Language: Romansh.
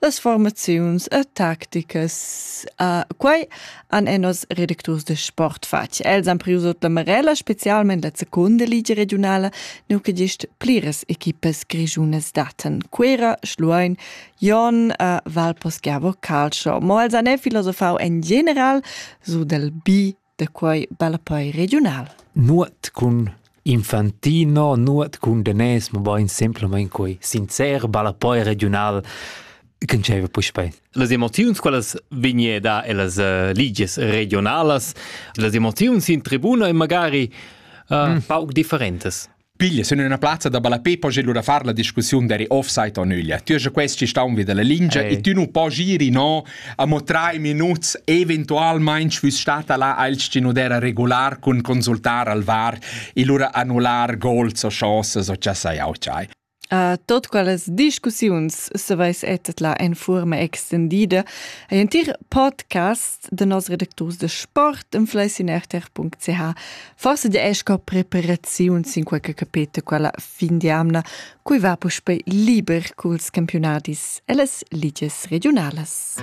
Las formaziuns e tacticas uh, quai han e nos redacturs de sport fatg. Els han prius la Marella specialment la seconda ligia regionala, nu che gist pliras equipas grigiunas daten Cuera, Schluein, Jon, uh, Valposchiavo, Calcio. Mo els han e filosofau en general su del bi da quei ballapei regiunal. Nuot cun Infantino, nuot cun Denes, mobein semplamein quei sincer ballapei regiunal che diceva puspei. Las emoziuns quelles vegneda e las uh, ligies regionalas, las emoziuns in tribuna e magari uh, mm. pauc differentes. Piglia sun üna plazza da ballapé po gir lura far la discussiun deri offside o nüglia. Tü haja quest ci staun vi dalla lingia e tü nu po giri no a mo trai minuts eventualmain schwüss stata là als ci nu dera regular cun consultar al var e lura annular gols o chances o cha sai au chai. A tot quellas discussiuns se vais etet la en forma extendida. Ein tir podcast de nos redacturs de sport en fleissinerter.ch forse de esca preparaziun sin qualche capete quella fin di amna cui va puspe liber culs campionadis e las ligies regionalas.